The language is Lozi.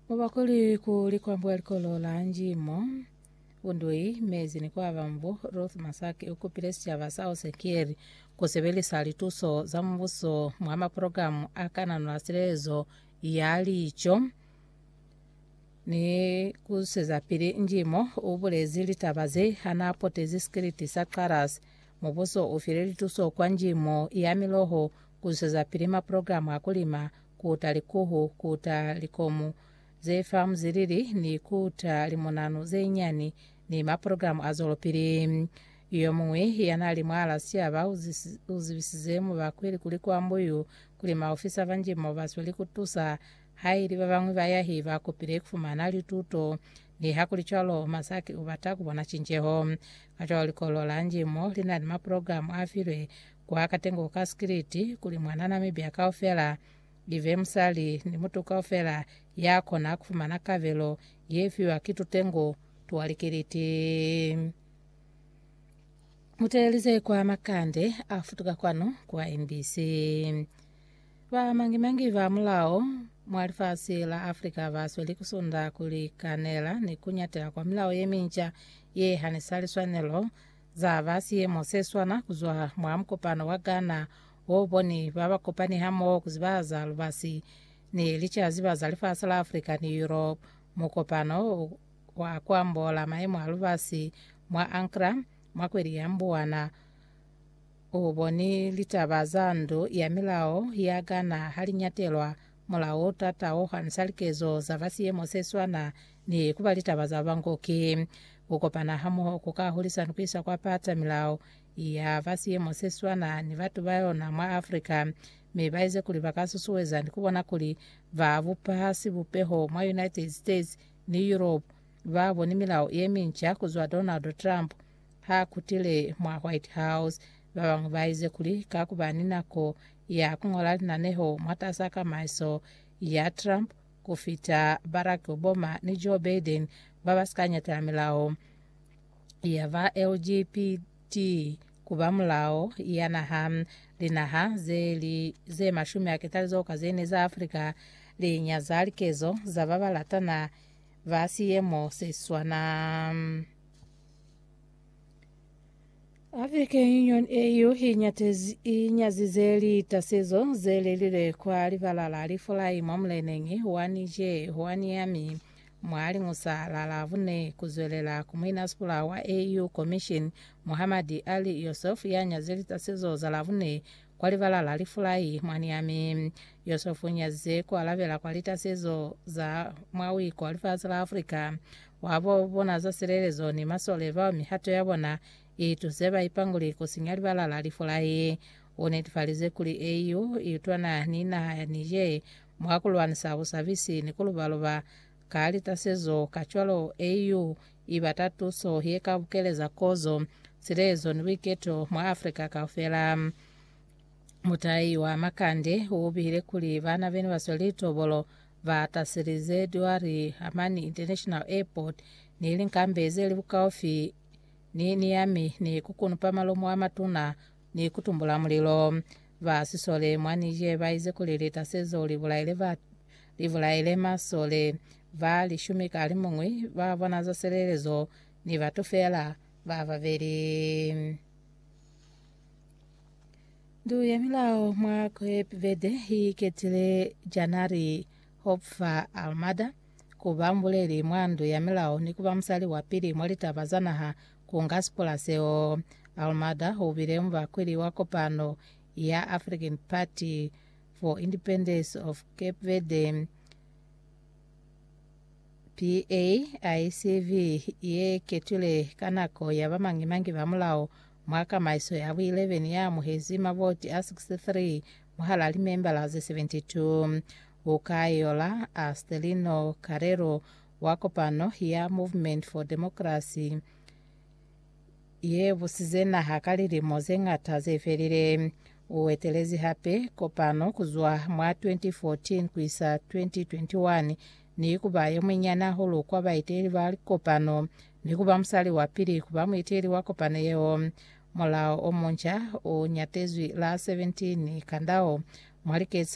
Mubakuli ku likwambo ya likolo la Njimo Undui mezi ni kwaba mbo Ruth Masaki ukupile sicaba sa Osekieri kusebelisa lituso za mubuso mwa maprogramu a kanano a silezo ya lico ni kuseza pili Njimo ubulezi litaba ze hana potezi sikiliti sa Xarasi. Mubuso ufile lituso kwa Njimo ya miloho Kuzwezapili maprogramu a kulima, kuta likuhu, kuta likomu ze farm zilili ni kuta limunanu zeinyani ni maprogramu a zwelopili. Yomuñwi yanali mwaal'a siaba uzibisize mubakweli kuli kwa Mbuyu kuli maofisa ba njimo basweli kutusa haili babañwi bayahi bakupile kufumana lituto. Nihakulicwalo, Masaki ubata kubona cinceho. Kacwalo likolo la njimo lina ni maprogramu afilwe Kwa katengo ka sikiliti, kuli mwana na mibya kaufela ibe musali ni mutu kaufela ya kona kufumana kabelo ye fiwa ki tutengo twa likiliti. Muteelize kwa makande a futuka kwanu kwa MBC. Ba mangi-mangi ba mulao mwa lifasi la Africa ba sweli ku sunda ku likanela ni ku nyatela kwa milao ye minca ye hanisa liswanelo Za ba siyemo se swana kuzwa mwa mukopano wa Ghana o boni ba ba kopani hamoho ku zibahaza lubasi ni licaziba za lifasi la Africa ni Europe. Mukopano o wa ku ambola mayemo a lubasi mwa Ankra mwa kweli ya Mbuwana u boni litaba za ndu ya milao ya Ghana ha li nyatelwa Mulao ta taohansa likezo za ba siyemo se swana ni ku ba litaba za bango ki ku kopana hamoho ku ka hulisa ni ku isa kwa pata milao ya ba siyemo se swana ni batu ba yona mwa Afrika mi ba ize kuli ba ka susueza ni ku bona kuli ba bupa sibupeho mwa United States ni Europe ba boni milao ye minca ku zwa Donald Trump ha kutile mwa White House. Ba bañwi ba ize kuli ka ku ba ni nako ya ku ñola linaneho mwataza kamaiso ya Trump ku fita Barack Obama ni Joe Biden ba ba si ka ñatela milao ya ba LGBT ku ba mulao ya naha. Linaha ze li ze mashumi a ketalizo ka ze ne za Afrika li nyaza likezo za ba ba latana ba siemo se swana. African Union AU inyazize litasezo zelelile kwa libala la lifulai mwa muleneng wa Niger wa Niamey mwa liñusa la Labune kuzwelela ku muinasipula wa AU Commission Mohammad Ali Youssouf yanyaze litasezo za Labune Kwa libala la lifulai, mwani yami. Yosefu nyazize ku alabela kwa lita zezo za mwa wiko wa lifasi la Afrika, wa bo bona za silelezo ni masole bao mihato ya bona i tuze ba ipanguli ku sinya libala la lifulai. U netifalize kuli AU i utwana ni naha ya Niger mwa ku lwanisa busabisi ni ku luba-luba ka lita zezo, kacwalo AU I bata tuso ye ka bukeleza kozo, silezo ni buiketo mwa Africa kaufela. Mutai wa Makande u bihile kuli bana bene ba sweli tobolo ba taselize Dwar Amani International Airport ni linkambe ze li bukaufi ni Niamey ni ku kunupa malomo a matuna ni kutumbula mulilo. Ba sisole mwa Niger baize kuli lita sezo libulaile ba libulaile masole ba lishumi ka limuñwi ba bona za silelezo ni batu feela ba babeli. Ndu ya milao mwa Cape Verde iketile Janari Hopfa Almada kuba mbuleli mwa ndu ya milao ni kuba musali wa pili mwa litaba za naha Ku nga sipula seo, Almada u bile mubakweli wa kopano ya African Party for Independence of Cape Verde, PAICV, ye ketwile ka nako ya bamañi-mañi ba mulao mwa kamaiso ya bu 11 ya amuhezi mavoti a 63 mwahal'a limembala ze 72. U ka yola Astelino Carrero wa kopano ya Movement for Democracy ye busize naha ka lilimo ze ñata ze felile. U etelezi hape kopano ku zwa mwa 2014 ku isa 2021 ni ku ba yo munyinyani hahulu kwa baeteli ba likopano ni ku ba musali wa pili ku ba mueteli wa kopano yeo. Mulao o munca u ñatezwi la 17 Kandao mwa liketsa